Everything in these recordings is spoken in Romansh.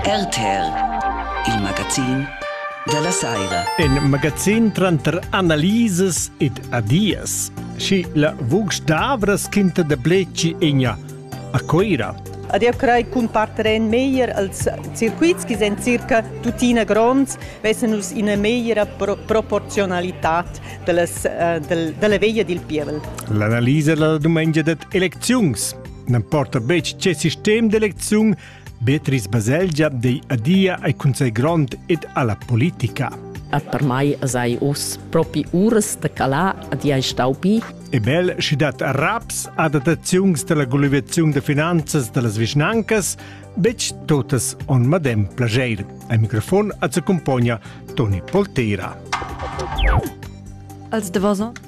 RTL, il magazin della saira. In magazin tranter analises ed adias. Schi la vugs d'avras quinta de bleci egna a Coira. Ad eu crei cun parteren meglier als circuits che sind circa tuttina gronds, vessen nus ina megliera pro proporzionalität dellas, uh, del, della veglia dil pievel. L'analisa della dumengia det elecziuns. n'emporta betg che sistem d'elecziun, Beatrice Baselgia dei adia ai consei grond ed alla politica. Et per mai sei us propi uras de calar ad ei stau bi. E bel schi dat raps ad adattaziuns della gulivaziun de finanzas dellas vischnancas, bec totas on madem plageir. Ai microfon ad se compogna Toni Polteira. Als de vosan?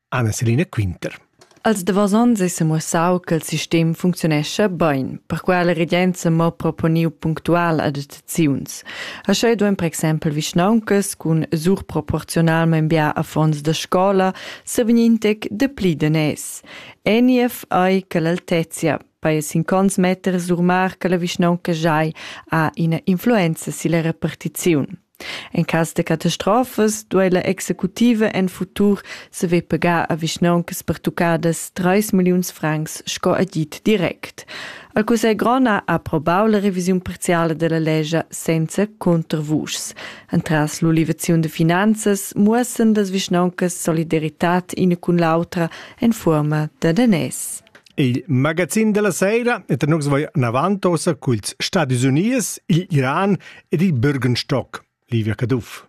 Anna Selina Quinter. Als davos onns è semuossau che il sistem funcziunescha bein, perquai la regenza mo proponiu punctual adattaziuns. Aschei duein per exempel vischnauncas cun surproporzionalmein bia affons da scola sevegnintec dapli daners. Eniev ei che l'altezia paia sin cons meter surmar che la vischnaunca giai ha ina influenza silla repartiziun. En cass de catastrofas duei la executiva en futur saver pagar a vischnauncas pertuccadas 3 milliuns francs sco agid direct. Il Cussegl grond ha approbau la revisiun parziala della legge senza contravuschs. Entras l'ulivaziun de finanzas muossen las vischnauncas solidaritad ina cun l'autra en fuorma da danès. Il magazin della sera et nux vai navant ossa culs Stadis Unies, il Iran ed il Bürgenstock, Livia Caduff.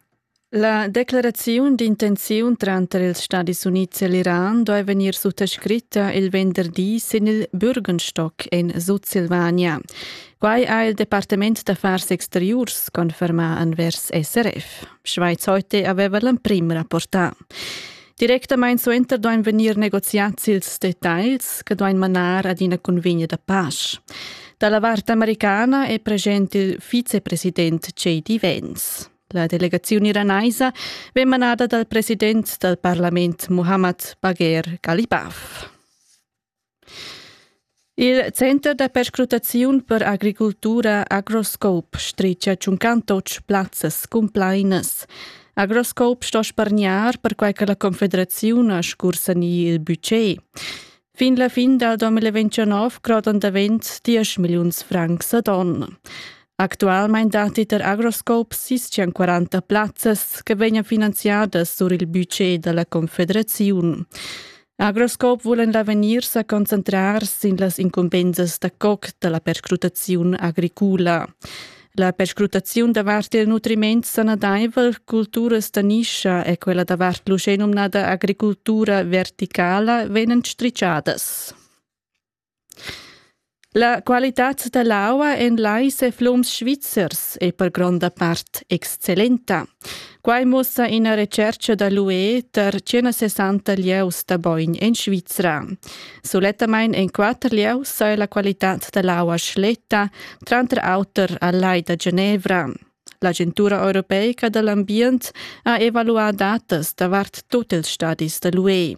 La declaraziun d'intenziun tranter ils Stadis Units e l'Iran doi vegnir suttascritta il venderdi sin il Bürgenstock in Sutsilvania. Quai ha il Departement d'affars exteriurs confermà anvers SRF. Schweiz heute aveva l'emprim rapportà. Directamain suenter duain vegnir negoziads ils detagls che duain manar ad ina convegna da pace. Da la vart americana è present il vicepresident J.D. Vance. La delegaziun iranaisa vegn manada dal president dal parlament Mohammad Bagher Galibaf. Il center da perscrutaziun per agricultura Agroscope stricha tschuncan tots plazzas cumplainas. Agroscope sto spargnar perquai che la Confederaziun ha scursanì il budget. Fin la fin dal 2029 crodan davent 10 milliuns francs ad onn. Actualmein datti per Agroscope 640 plazzas che vegnan finanziadas sur il budget da la Confederaziun. Agroscope vulan l'avegnir sa concentrar sin las incumbensas da coc da la perscrutaziun agricula. La perscrutaziun davart il nutriment sanadaivel, culturas da nischa e quella davart l'uschè numnada agricultura verticala vegnan strichadas. La qualitad dall'aua en lais e flums svizzers ei per gronda part excellenta. Quai muossa ina retscherca da l'UE tar 160 lieus da bogn en Svizra. Sulettamain en quatter lieus saja la qualitad da l'aua schletta, tranter auter al Lai da Genevra. L'agentura europeica da l'ambient ha evaluà datas davart tut ils stadis da l'UE.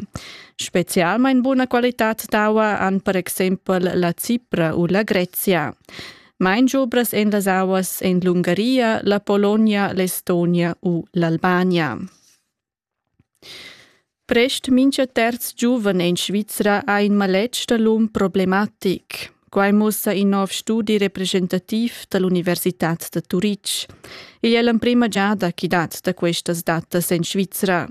Spezialmain buna qualitad d'aua han per exempel la Cipra u la Grezia. Main giubras en las auas en l'Ungaria, la Polonia, l'Estonia u l'Albania. Prest mincha terz giuven in Svizra ha in maletg da l'um problematic. Quai muossa in nouv studi representativ da l'Universitad da Turitg. Igl è l'emprima giada chi dat da questas datas in Svizra.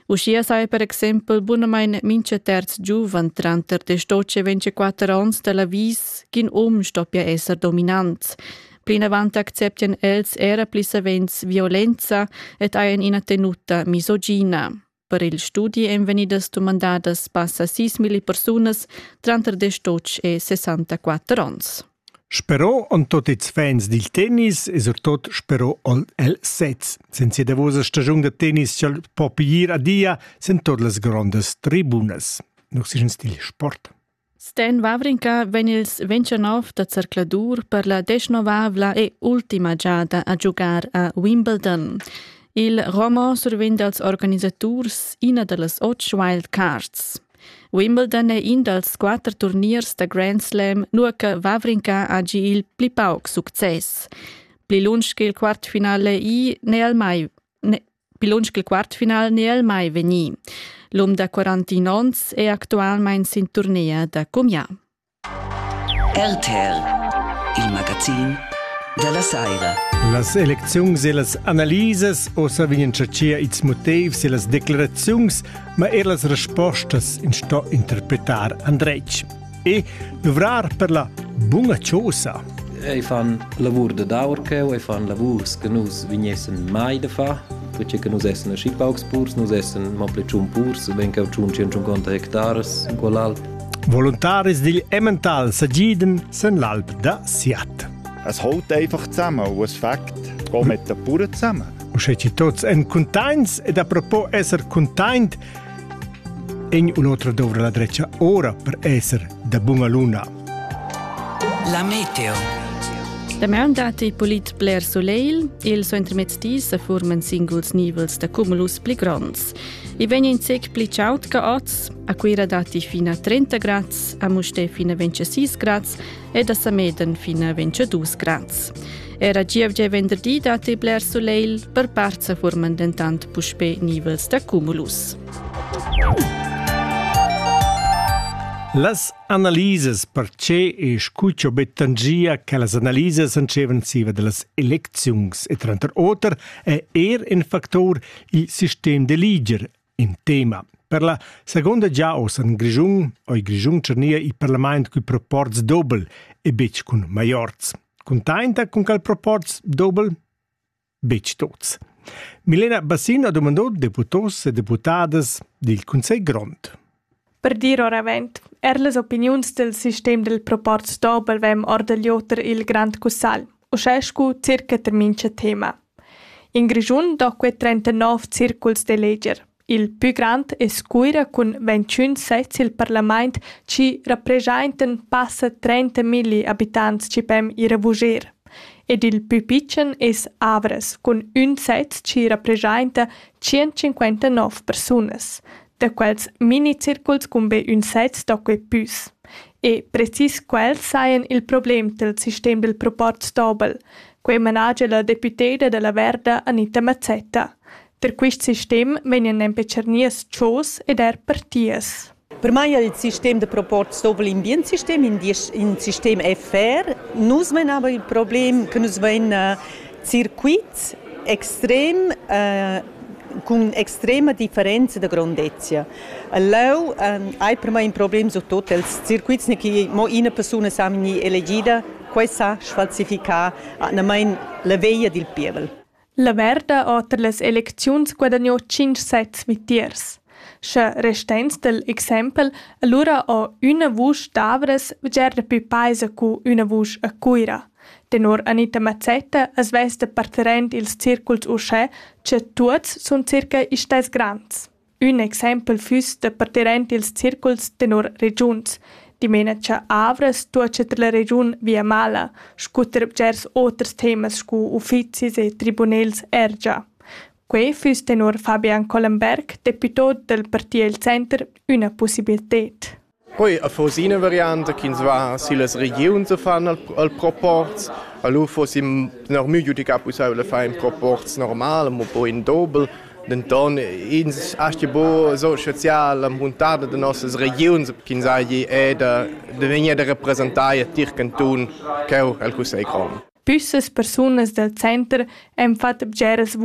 Uschia saja per exempel bunamain mincha terz giuven tranter 18 e 24 ons da l'avis ch'in um stoppia esser dominant. Plinavant acceptian els era pli savens violenza ed hajan ina tenuta misogina. Per il studi èn vegnidas dumandadas passa 6.000 persunas tranter 18 e 64 onns. Sperò en tot ils fans dil tennis e surtot sperò ol el sez. Senza davosa stagiun da tennis ch'el po piglir a dia sen tot las grondas tribunas. Nus sin stil sport. Sten Wawrinka vegn ils 29 da zercladur per la desnovavla e ultima giada a giugar a Wimbledon. Il Romo survegn dals organisaturs ina da las otg wildcards. Wimbledon è in dals quatter turniers da Grand Slam, nua che Wawrinka ha gi il pli pauc success. Pli lunsch che il quartfinale i n'è el mai, Bilunsch il quartfinal ne el mai vegni. L'um da 41 ons è actualmein sin turnea da Cumia. RTL, il magazin della Saira. Las elecziuns e las analises ossa vegnan tschartschia ils motivs e las declaraziuns, ma er las respostas in sto interpretar andretg. e duvrar per la bunga chosa. Ei fan lavur de daur cheu, ei fan lavurs che nus vignessen mai de fa, perché che nus essen aschi paucs purs, nus essen ma pli tschun purs, ben cheu tschun 150 hectares in quell'alp. Volontaris digl Emmental sagiden sen l'alp da Siat. Es haut einfach zusammen und es Fakt, gehen mit den Bauern zusammen. Und schätze tots en contains ed apropos esser containt, In u l'otra dovra la dretga ora per esser da bunga luna. La meteo. Damaun datti polit bler soleil. Il suentermezz di sa forman singuls nivels da cumulus pli gronds. I vegn in sec pli chaud che oz. A Cuira datti fino a 30 grads, a Mustè fino a 26 grads ed a Sameden fin a 22 grads. Era gievgia e venderdi datti bler sulegl, per part sa forman dentant puspè nivels da cumulus. Las analisas per che e scuccio bettangia che las analisas ancevan siva de las elecziungs e tranter oter è er in factor il sistem de liger in tema. Per la seconda gia oz en Grischun, oi Grischun Cernia i parlament cui proports dobel e betg cun maiorz. Containta cun cal proports dobel? Betg tots. Milena Bassino ha domandò deputos e deputadas dil Consell Grond. Per dir oravant, er las opiniuns dal sistem dal proporz Dobel vegn or da l'oter il Grand Cussagl, uschè scu circa tar mincha tema. In Grischun do que 39 circuls d'eleger. Il pü grand es Cuira cun 21 sezs i'l parlamaint chi rapreschaintan passa 30 milli abitants chi pem ir a vuger. Ed il pü pitschen es Avras cun ün sez chi rapreschainta 159 persunas. da quels minicirculs cun be ün sez da quei püs. E precis quels sajan il problem dal sistem dal proportsdobel, quei managia la deputeda dalla Verda Anita Mazzetta. Per quist sistem vegnan nempe tschernias tschos ed er partias. Per mai è il sistem da proportsdobel in bien sistem, in, in sistem FR. Nus menavan il problem che nus ven circuits extrem eh, cun extrema differenza da grondezia. Leu eh, hai per me in problem su tot els circuits che mo ina persona sa ni elegida, quei sa sfalsificar anamain la veia dil pievel. La merda oter las elecziuns guadagnò 5 sets mitiers. Sche restens del exempel, allora ho üna vusch d'Avres veger da più paisa cu üna vusch a Cuira. Tenor Anita Mazzetta as vesta parterrend ils circuls uschè cha tuots sun circa istess grands. Ün exaimpel füss da parterrend ils circuls tenor regiuns, dimena cha Avras tuocha tra la regiun Viamala scutter bgers oters temas scu uffizis e tribunels ergia. Quei füss tenor Fabian Collenberg, deputà dal parti El Center, üna pussibilted. Poi affons ina varianta ch'ins va sillas regiuns a fan al, al proporz. A lu fossi noch miu giudicar pusseivel da far in proporz normal, mo poi in dobel. Denton ins aschi buca so spezial la muntada da nossas regiuns ch'ins hagi è da, da vegnir da representar tier cantun cheu el cussegl grond. Püssas persunas dal center han fatg bgeras